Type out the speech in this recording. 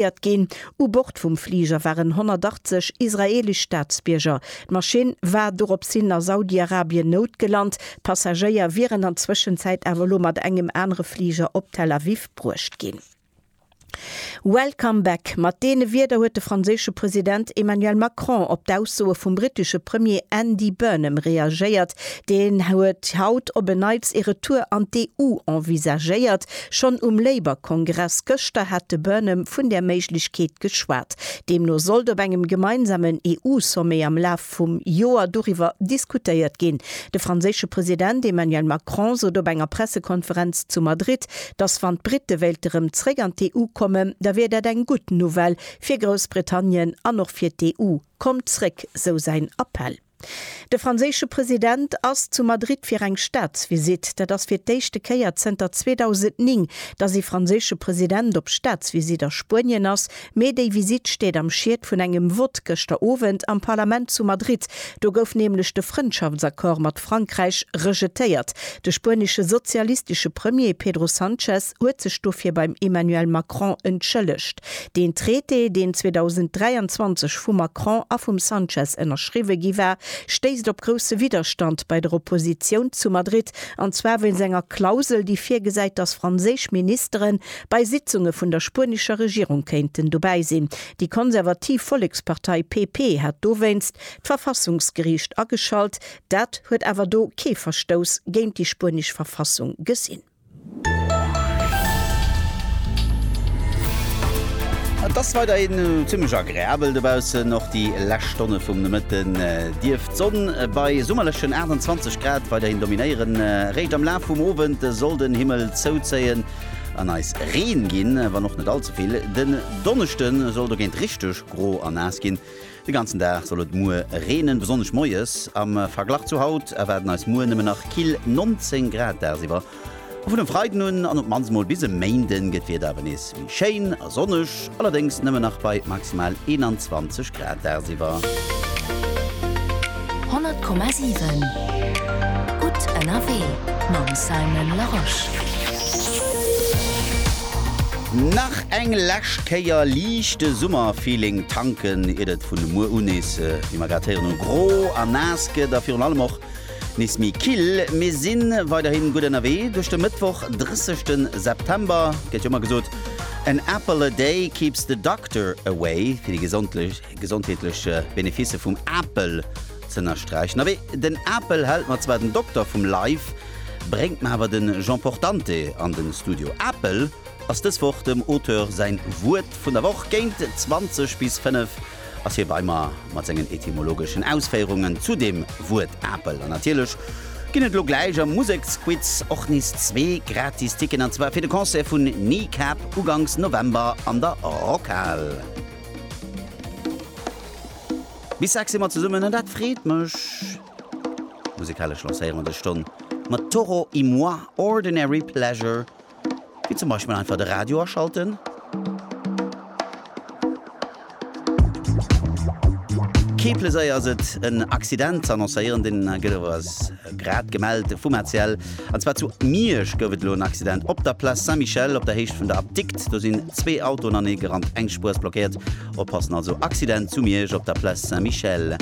Evakuéiert ginn. U Bord vum Fliger waren 180 israeelesch Staatsbierger. D'Maschinn war dorops hin a Saudi-Arabien noutgelant. D'Passagéier wieren an Zwëschenzäit awer elo mat engem anere Fliger op Tel Aviv bruecht ginn. Welcome back, mat deene Wierder huet de franséische President Emmanuel Macron op d'Aussoe vum brittesche Premier Andy Burnham reagéiert, Deen huet haut op en Neits ee Retour an d'EU envisagéiert. Schonn um Labour-Kongress gëschter hat de Burnham vun där Méiglechkeet geschwat. Deemno sollt op engem gemeinsamen EU-Sommet am Laf vum Joer doriwwer diskutéiert ginn. De franséische President Emmanuel Macron sot op enger Pressekonferenz zu Madrid, datt wann d'Brite wéilte rëm zréck an d'EU kommen, da wier dat eng gutt Nouvelle fir Groussbritannien an och fir d'EU. Kommt zréck, sou säin Appell. De franséische President ass zu Madrid fir eng Staatsvisitt. Dat ass fir d'éischte Kéier zënter 2009, datt ee franséische President op Staatsvisitt a Spuenien ass. Mee déi Visitt steet am Schied vun engem Vott gëschter Owend am Parlament zu Madrid. Do gouf nämlech de Frëndschaftsaccord mat Frankräich rejetéiert. De spuenesche sozialistesche Premier Pedro Sanchez, huet sech dofir beim Emmanuel Macron entschëllegt. Deen Traité, deen 2023 vum Macron a vum Sanchez ënnerschriwwe gi war, stéisst op grousse Widderstand bei der Oppositioun zu Madrid, an zwar wéinst enger Klausel, déi virgesäit, datt franséisch Ministere bei Sitzunge vun der spuenescher Regierung kéinten dobäi sinn. Déi konservativ Vollekspartei PP hat dowéinst d'Verfassungsgeriicht ageschalt, dat huet awer do kee Verstouss géint déi spuenesch Verfassung gesinn. Et ass weiderhin zimmlech agreabel dobaussen. Och déi lescht Stonne vum Nomëtten dierft d'Sonn bei summerlechen 28 Grad weiderhin dominéieren. Eréischt am Laf vum Owend soll den Himmel zouzéien an eis Reen ginn, wann och net all ze vill. Den Donneschde soll dogéint richteg gro a naass ginn. De ganzen Dag soll et muer reenen, besonnesch moies. Am Verglach zu haut erwaarden eis muer nëmmen nach kill 19 Grad dagsiwwer. A vun e Freiden un an op d'mannst mol bis e Méinde gëtt d'Wieder awer nees méi schéin a sonneg, allerdéngs nëmmen nach bei maximal 21 Grad dagsiwwer. 100,7 Gutt ënnerwee mam Simon Larosche. Nach eng lescht Kéier liichte Summerfeeling tanken, iert et vun muer u nees, wéi mer grad héieren, gro a naass gëtt a virun allem och nees méi kill. Mir si weiderhi gutt ënnerwee duerch de Mëttwoch, 30 de September. Gëtt jo ëmmer gesot, An apple a day keeps the doctor away, fir déi gesondlech. Gesondheetlech Benefisse vum Apel z'ënnersträichen. Awee den Apel hält mer zwar den Dokter vum Live, bréngt mer awer den Jean Portante an den Studio. Apel ass dës Woch dem Auteur säin Wuert vun der Woch. Géint 20 bis 5 ass hie bei mer mat sengen etymologeschen Ausféierungen zu dem Wuert Apel. An natierlech ginn et elo gläich am Museksquiz och nees zwee gratis Ticketen an zwar fir de Concert vun Kneecap ugangs November an der Rockhal. Bis 6 si mer zesummen an dat freet mech! Musikalesch lancéiere mer dës Stonn mat Toro y Moi, Ordinary Pleasure, wéi zum Beispill einfach de Radio aschalten, kee Pleséier ass et, en Accident ze annoncéieren, deen gëtt awer als. Grad gemellt vum ACL. An zwar zu Miersch gouf et elo en Accident op der Place Saint-Michel op der Héicht vun der Apdikt. Do sinn zwee Autoen anee gerannt, eng Spuer ass blockéiert. Oppassen also, Accident zu Miersch op der Place Saint-Michel.